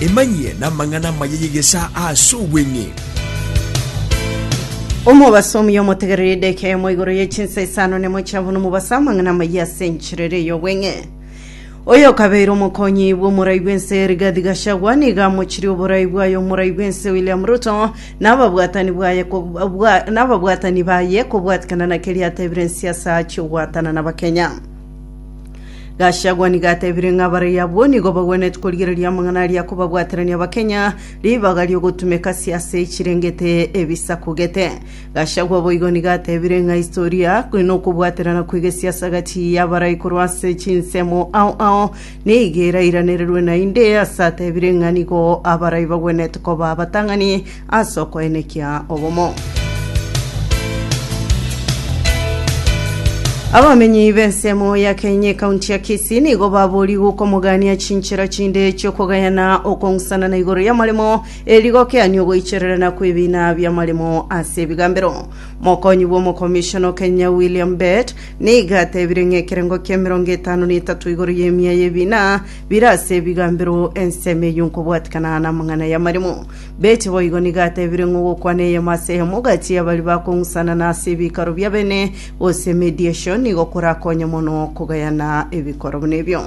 Emanyie namang'ana amaya y'egesaa ase obweng'e. Omobasomi omotegereri edeka eyemo igoro ye chinsa isano nemo chia buna omobasa amang'ana amayia ase encherero ey'obweng'e. Oyo okabeire omokonyi bw'omorai bw'ense Rigathi Gachagua nigo amochirie oborai bwaye omorai bw'ense William Ruto na ababwatani bwaye ko- bwa- na ababwatani baye kobwatikana na keria atebire ensiasa achie ogwatana na Abakenya. Gachagua nigo atebire ng'a abaraiyo abwo nigo bagwenereti korigereria amang'ana aria akobabwaterania Abakenya ribaga riogotumeka siasa echirengete ebisaku gete. Gachagua boigo nigo atebire ng'a historia, nokobuaterana kwegesiasa gati y'abarai korwa ase chinsemo ao ao Nigo erairanererwe naende ase atebire ng'a nigo abarai bagwenerete koba abatang'ani ase okoenekia obomo. Abamenyi b'ensemo ya Kenye ekaunti ya Kisii nigo baboriigwe okomogania chinchera chinde chi'okogayana okong'usana na igoro y'amaremo e rigokiani ogoichererana kw'ebiina bi'amaremo ase ebigambero. Mokonyi bw'omokomishona o Kenya William Bett Nigo atebirie ng'a ekerengo ki'emerongo etano na etato igoro y'emia y'ebiina bire ase ebigambero ensemo eyio nkobwatikana namang'ana y'amaremo. Beche boigo nigo atebirie ng'a ogokwana eyemo ase eyemo gati y'abaria bakong'usanana ase ebikaro bi'abene gose mediation nigo korakonye mono kogayana ebikoro buna ebio.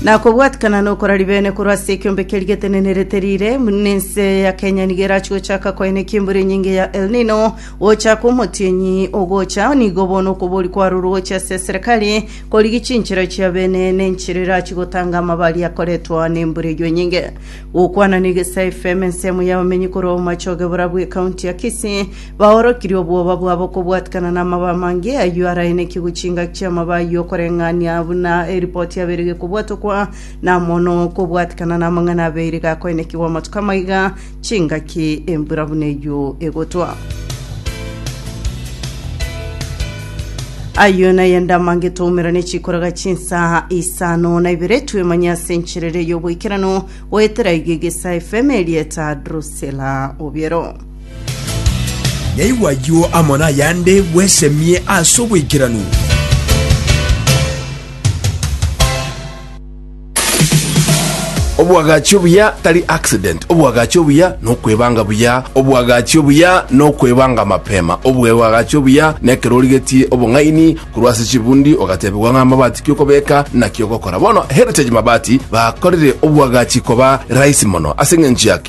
na kobwatikana nokora ribene korwa ase ekiombeke rigetenenerete rire nense ya kenya nigo erachi gochaka koina ekimbura enyinge ya el nino gochaka omotienyi ogocha nigo bono okobori kwarurwa gochia ase serikali korigi chinchera chia bene nenchera erachi gotanga amabari akoretwa nembura eyo enyinge gokwana na egesae fm ensemo y'abamenyi korwa omomachoge bora bw'ekaunti ya kisii Baorokirie obwoba bwabo kobwatikana namaba amange ayio araenekigwe chingaki chi'amaba ayio okoreng'ania buna eripoti yabeire gekobwatokwa na mono kobwatikana namang'ana abeire gakoenekigwa amatuko amaiga chingaki embura buna eyio egotwa. Ayio nayende amange twaumerane chikoraga chinsa isano na ibere twemanye ase encherere y'oboikeranu goetera iga egesae fm erieta Drusela Obiero. Yaigwa ayio amo nayande, bwesemie ase oboikeranu. Oboagachi obuya tari accident, oboagachi obuya nokwebanga buya, oboagachi obuya nokwebanga mapema, oboagachi obuya nekero origetie obong'aini korwa ase chibundi ogatebigwa ng'a amabati kiokobeka naki ogokora. Bono Heritage Mabati bakorire oboagachi koba rahisi mono ase eng'encho ya ki?